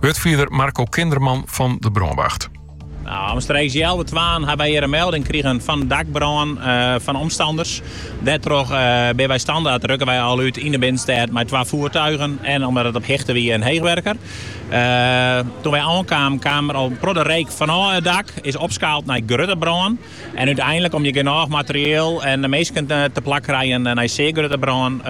Wurdfierder Marco Kinderman fan de brânwacht. Omstreeks healwei twaën ha wy hjir in melding krigen fan in dakbrân fan omstanners. Dêrtroch binne wy standert, rukke wy al út yn de binnenstêd mei twa foartuigen en omdat it op hichte wie in heechwurker. Doe't wy oankamen kaam der al protte reek fanôf it dak, is opskaald nei grutte brân. En úteinlik, om't je genôch materieel en minsken teplak krije nei sear grutte brân,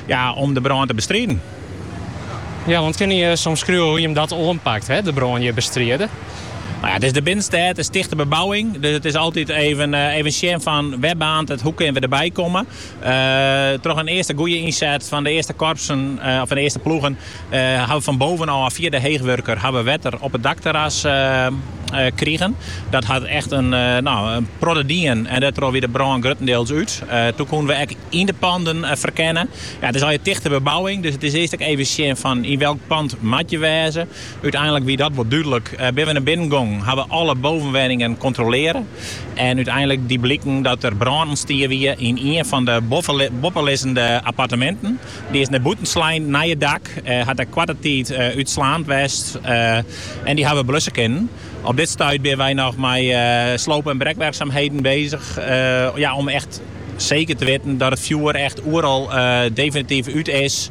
ja, om de brân te bestriden. Ja, want kinne je omskriuwe hoe je dat oanpakt, de brân hjir bestride? Nou ja, it is de binnenstêd, tichte bebouwing, dus it is altyd even sjen fan wêr baarnt it, hoe kinne we derby komme. troch in earste goede ynset fan de earste korpsen of fan de earste ploegen hawwe we fan bovenôf fia de heechwurker hawwe wetter op it dakterras krigen. Dat hat echt in protte dien en dêrtroch wie de brân gruttendeels út. Doen koene we ek yn de panden ferkenne. It is al in tichte bebouwing, dus it is earst ek even sjen fan yn welk pand moat je wêze. Uteinlik wie dat wol dúdlik. Binne we nei binnen gongen, hawwe we alle bovenwenningen kontrolearre en uteinlik die bliken dat der brân ûntstien wie yn ien fan de boppelizzende apparteminten. Dy is nei bûten slein nei it dak, hat ek koarte tiid útslaand west en dy hawwe we blusse kinnen. Op dit stuit binne wy noch mei sloop en brekwerksumheden bezich om echt seker te witten dat it fjoer echt oeral definityf út is.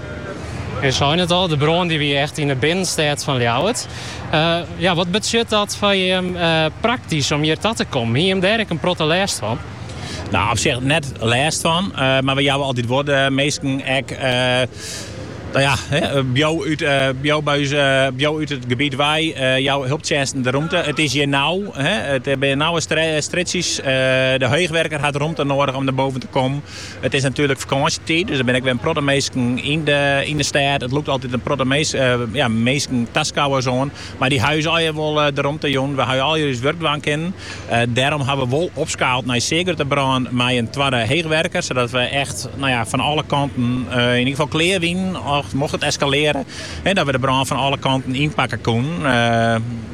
Jo seine it al, de brân die wie echt yn 'e binnenstêd fan Ljouwert. ja, wat betsjut dat foar jim praktysk om hjir ta te kommen? Hie jim dêr ek in protte lêst fan? No, op sich net lêst fan, mar we jouwe altyd wol de minsken ek no ja, bliuw, bliuw út it gebiet wei, jou helptsjinsten de romte. It is hjir nau, it binne nauwe strjitsjes, de heechwurker hat romte nedich om derboven te kommen. It is natuerlik fakânsjetiid, dus der binne ek wer in protte minsken yn de, yn de stêd. It lûkt altyd in protte mis, ja, minsken, taskouwers oan. Mar dy hawwe ús allegear wol de romte jûn. We hawwe allegear ús wurk dwaan kinnen. Dêrom hawwe we wol opskaald nei sear grutte brân mei in twadde heechwurker, sadat we echt, no ja, fan alle kanten yn ieder gefal klear wienen, mocht it eskalearje, dat we de brân fan alle kanten ynpakke koenen.